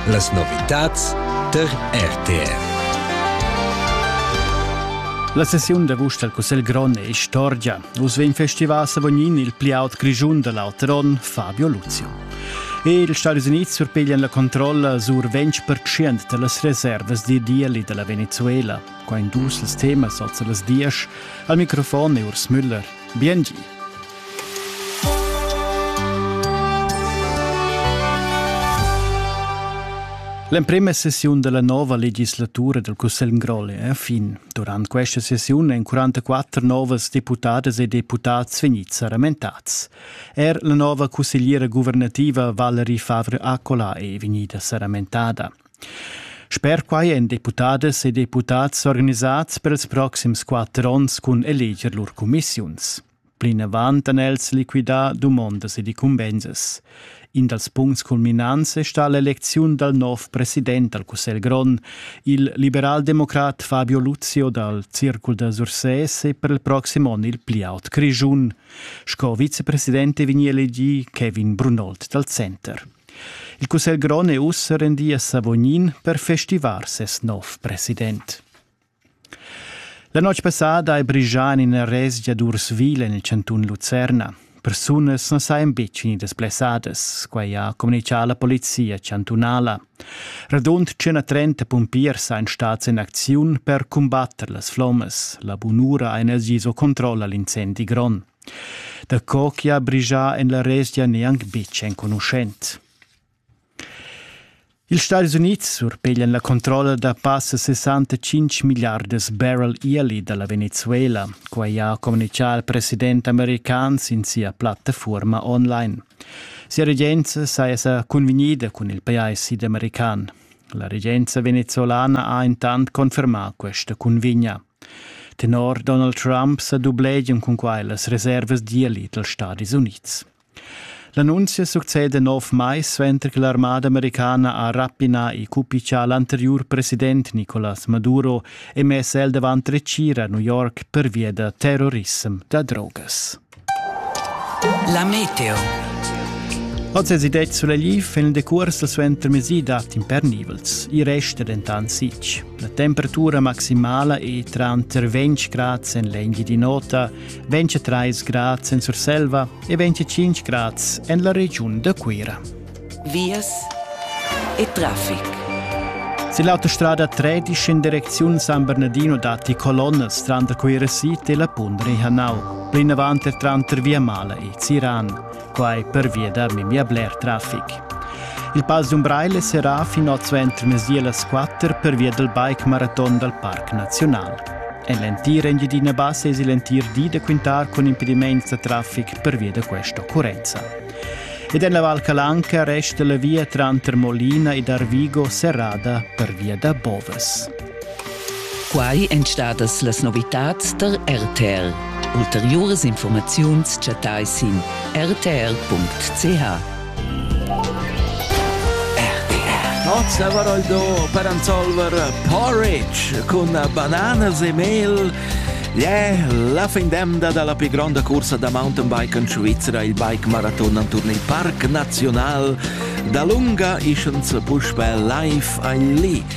Las novitads tar RTR. La sessiun da vust dal Cussegl grond è istorgia. Uss vegn festivà a Savognin il pli aut grischun da l'auter onn, Fabio Luzio. E ils Stadis Unids surpiglian la controlla sur 20% da las reservas d'ideali da la Venezuela. Qua in dus las temas oz las dies. Al microfon è Urs Müller. Biengi. L'emprema sessiun dalla nova legislatura del Cussegl Grolle è a fin. Durant questa sessiun èn 44 novas deputadas e deputats vegnids saramentats. Er la nova cussegliera guvernativa Valerie Favre-Accola è vegnida saramentada. Sper quai èn deputadas e deputats organisats per ils proxims quatter onns cun eleger lur cumissiuns. Plinavant han els liquidà dumondas ed incumbensas. In dals puncts culminants è stà l'elecziun dal nov president dal Cussegl grond, il liberaldemocrat Fabio Luzio dal Circul da Sursès e per il proxim onn il pli aut Grischun. Sco vicepresident è vegnì elegì Kevin Brunold dal Center. Il Cussegl grond è ussa rendì a Savognin per festivar ses nov president. La notg passada hai brigià en ina resgia d'ursvil en il chantun Lucerna. Persunas na sajan betg vegnidas blessadas, quai ha communitgà la polizia chantunala. Radund 130 pumpiers sajan stads en acziun per cumbatter las flommas. La bunura ha els vis o controlla l'incendi grond. Da co che ha brigià en la resgia neanc betg enconuschent. Ils Stadis Unids surpeglian la controlla da passa sessantatschintg milliardas barrel yearly da la Venezuela. Quai ha communitgà il president american sin sia plattafuorma online. Sia regenza saja sa cunvegnida cun il pajais sidamerican. La regenza venezuelana ha intant confermà questa cunvegna. Tenor Donald Trump sa dublegian cun quai las reservas d'yearly dals Stadis Unids. L'annunzia succeda nov mais suenter che l'armada americana ha rapinà il cupichà l'anteriur president Nicolas Maduro e mess el davant retgira a New York pervia da terrorissem da drogas. La meteo. Oz è detto sulla LIF in decurs suenter mesi dati impernivels. I resta dentant sitg. La temperatura maximala è tra 20 gradi en l'enghi di nota 23 grads en Surselva e 25 grads en la regiun da Cuira. Vias e traffic. Se l'autostrada 13 in direczione San Bernardino datti colonnas tra da Cuira City e la Pundre Hanau, plinavant er tranter Via Mala e Ziran. quai pervia da memia bler traffic. Il Pass d'Umbraile serà fin oz ventermezdi las 4 pervia dal bike maraton dal Parc Naziunal. En l'entir Engiadina Bassa es il entir di da quintar cun impediments da traffic pervia da questa occurrenza. Ed en la Val Calanca resta la via tranter Molina ed Arvigo serrada pervia da bovas. Quai èn stadas las novitads tar RTL. Ulteriuras informaziuns chattai sin rtr.ch. Nozzavaroldo per Ansolver Porridge cun bananas e mel. Yeah, la fin d'emda dalla pli gronda cursa da mountainbike en Svizzera, il bike maraton en turn il Parc Nazional. Da lunga ischens puspè live a Lee.